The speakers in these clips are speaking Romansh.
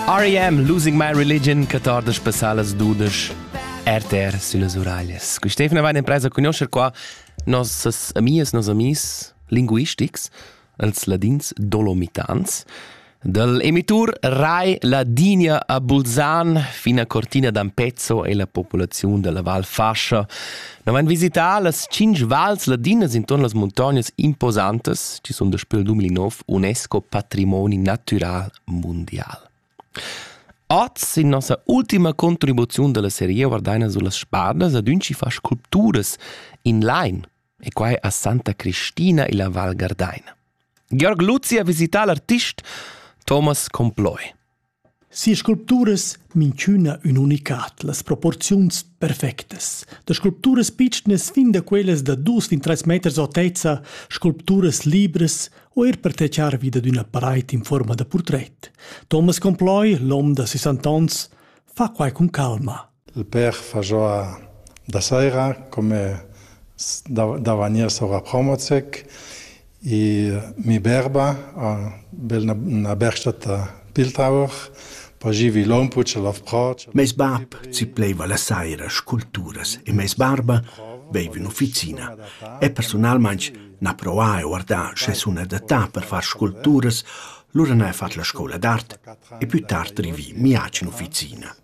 R.E.M. Losing My Religion, 14 passalas dudes, RTR sulle Uraglias. Qui Stefan va in impresa conoscer qua nossas amias, nos amis linguistics, els ladins dolomitans, dal emitur Rai Ladinia a Bulzan fino a Cortina d'Ampezzo e la popolazione della Val Fascia Na vain visità las tschinch vals ladinas intuorn las muntognas imposantas chi sun daspö il 2009 UNESCO patrimoni natüral mundial. Oz, in nossa ultima contribuziun da la serie, guardaina su las spadas ad ün chi fa sculpturas in lain, e quai a Santa Cristina illa Val Gardaina. Georg Luzzi ha visità l'artist Thomas Comploi. Sia sculpturas minchüna ün unicat, las proporziuns perfectas. Da sculpturas pitschnas fin da quellas da dus fin trais meters autezza, sculpturas libras o eir per tachar vi dad üna paraid in fuorma da purtret. Thomas Comploi, l'hom da 60 ans, fa quai cun calma. Il pèr fa giò da saira come da da vagnir sura Promozec e mi berba, bel 'na bersta da Bildhauer, poi gir vi lon pur ch'el ov proc. Meis bap zipleva la saira sculpturas e meis barba veiva in ufficina e persunalmaing n'ha provà e guardà sche sun adattà per far sculpturas, lura n'ha fat la scoula d'art e plü tard rivì miac in ufficina.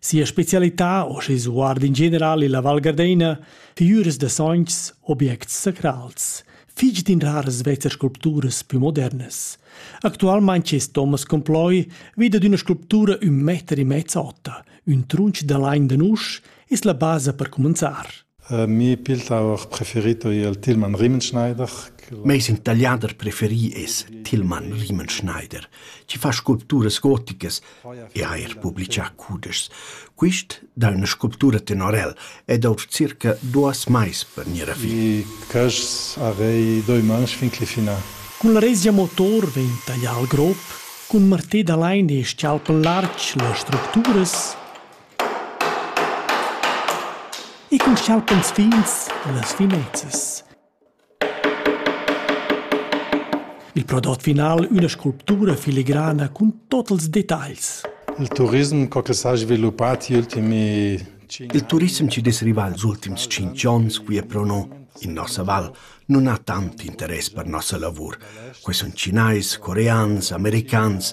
Sia specialità, o schi sguard in general illa Val Gardeina, figüras da sogns, objects sacrals, fich d'in raras vezzas sculpturas pü modernas. Actualmaing es Thomas Comploi vi dad üna sculptura ün meter e mezz ota, ün trunch da lain da nusch, es la basa per cumanzar. Mi pil tower preferito è il Tillmann Riemenschneider. Meis ün tagliader preferi es Tillmann Riemenschneider, chi fa sculpturas goticas e ha eir publichà cudeschs. Quist dà üna sculptura tenorel ed ouv circa duos mais per gnir a fin. I quaists arei doi mans fin cli finà. Cun la Rezia Motor vegn taglià il grop cun martè da lain e s-chalp lartg las structuras. E co schautan ils figls las fimezzas? Il prodot final üna sculptura filigrana cun tot ils detagls. Il turism co che s'ha sviluppà negli ultimi Il turissem chi dess rivar ils ultims tschinch ons qui e pro no in nossa val non ha tant interess per nossa lavur. Que sun Chinais, Coreans, Americans,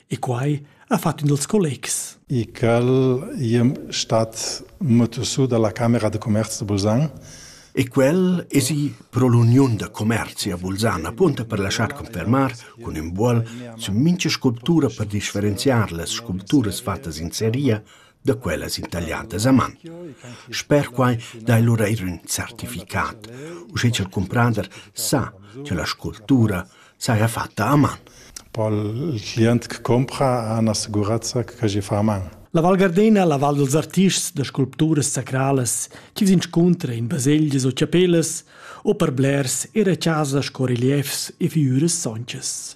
e quai ha fatg ün dels collegs. E quel iem stat mutusu dalla Camera de Commerz de Bulzan. E quel esi pro l'Uniun de Commerzi a Bulzan, appunto per lasciar confermar con ün buol su mincha sculptura per differenziar las sculpturas fattas in seria da quellas itagliadas a man. Sper quai dai lura eir ün certificat, uschè cha'l cumprader sa cha la sculptura saja fatta a man. Pol il client che compra ha una sicurezza che gli fa a man. La Val Gardena, la Val dels artists da sculpturas sacralas, chi s'inscuntra in baselgias o chapellas o per blers era chasa sco reliefs e figüras sonchas.